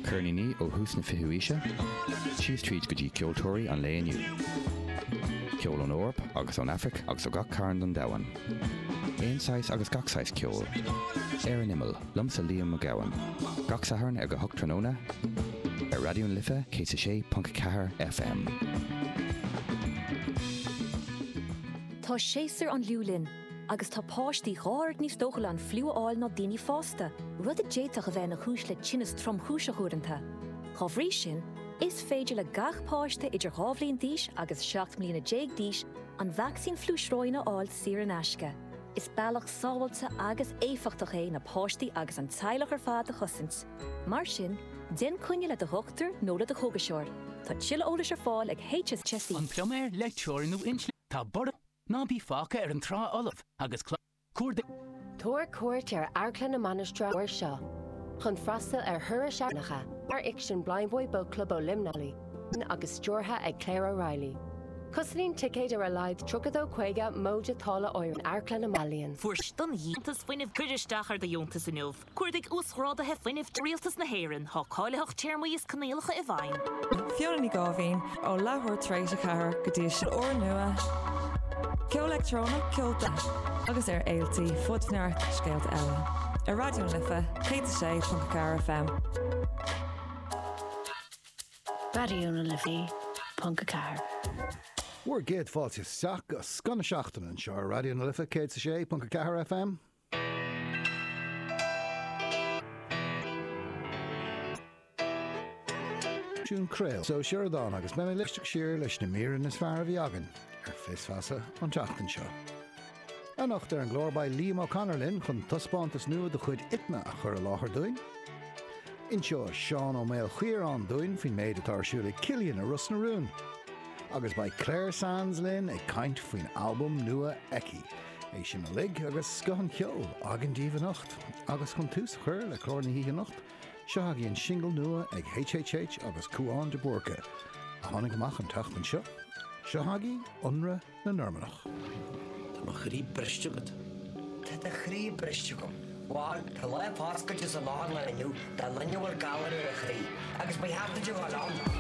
Ceirníní ó thús na fichiú aoise síos tríd go dtí ceoltóirí an lae inniu. Ceol ón Eoraip agus ón Aifric agus ó gach cearn don domhan. Aon saghas agus gach saghas ceoil. Ar an Imeall, liomsa Liam Mac Gabhann. Gach Satharn ag a hocht tráthnóna ar Raidió na Life 106.4 FM. Tá séasúr an fhliú linn. agus tá páistí dhá oiread níos dóchúla an fliú a fháil ná daoine fásta, rud a d'fhéadfadh a bheith ina chúis le tinneas tromchúiseach uaireanta. Dá bhrí sin, is féidir le gach páiste idir dhá bhliain d'aois agus seacht mbliana déag d'aois an vacsaín fliú sróine a fháil saor in aisce. Is bealach sábháilte agus éifeachtach é na páistí agus an teaghlach ar fad do chosaint, mar sin, déan coinne le do dhochtúir nó le do chógaiseoir. Tá tuilleadh eolais ar fáil ag HSE. An pluiméir, leictreoir nó innealtóir. Tá borradh? Ná bí fágtha ar an trá fholamh agus cuardaigh. Tabhair cuairt ar Amharclann na Mainistreach an uair seo chun freastal ar thuras eachtracha mar fhicsean Blindboy Boatclub ó Luimneach agus stiúrtha ag Claire O'Reilly. Cosnaíonn ticéad ar a laghad €32 50 móide táille áirithe in Amharclann na Mainistreach. Fuair seisean deontas fuinnimh Cuir isteach ar do dheontas inniu! Cuardaigh Uasghrádaithe Fuinnimh Tí Rialtas na hÉireann, tá cáilitheacht téarmaí is coinníollacha i bhfeidhm. Fiona Ní Gáibhín, ó leathuair tar éis a ceathair go dtí a sé. Clár nua, ceol leictreonach, ceolta agus ar fhéiltí fud neart scéalta eile ar Raidió na Life 106.4 FM. Raidió na Life 106.4. Bhur gcéad fáilte isteach go scoth na seachtaine anseo ar Raidió na Life 106.4 FM. Siún Craoladh Sioradán agus beidh mé ag éisteacht siar leis na míreanna is fearr a bhí againn ar Fios Feasa an tseachtain seo. Anocht ar an gclár beidh Liam O'Connor linn chun taispeántas nua de chuid Itma a chur i láthair dúinn. Inseoidh Seán Ó Maoil Chiaráin dúinn faoin méid atá ar siúl ag Cillian i Ros na Rún. Agus beidh Clare Sands linn ag caint faoin albam nua aici. É sin uilig agus scoth an cheoil againn daoibh anocht. Agus chun tús a chur le clár na hoíche anocht, seo chugaibh an singil nua ag HHH agus Cúán de Búrca, a tháinig amach an tseachtain seo. Seo chugaibh Ionradh na Normannach. Tá mo chroí briste agat. Tá do chroí briste agam. Bhal, tá Lá Paschal de san Lárnáin inniu dá ndaoine a bhfuil galar ar a chroí, agus beidh heachtra de dhul ann.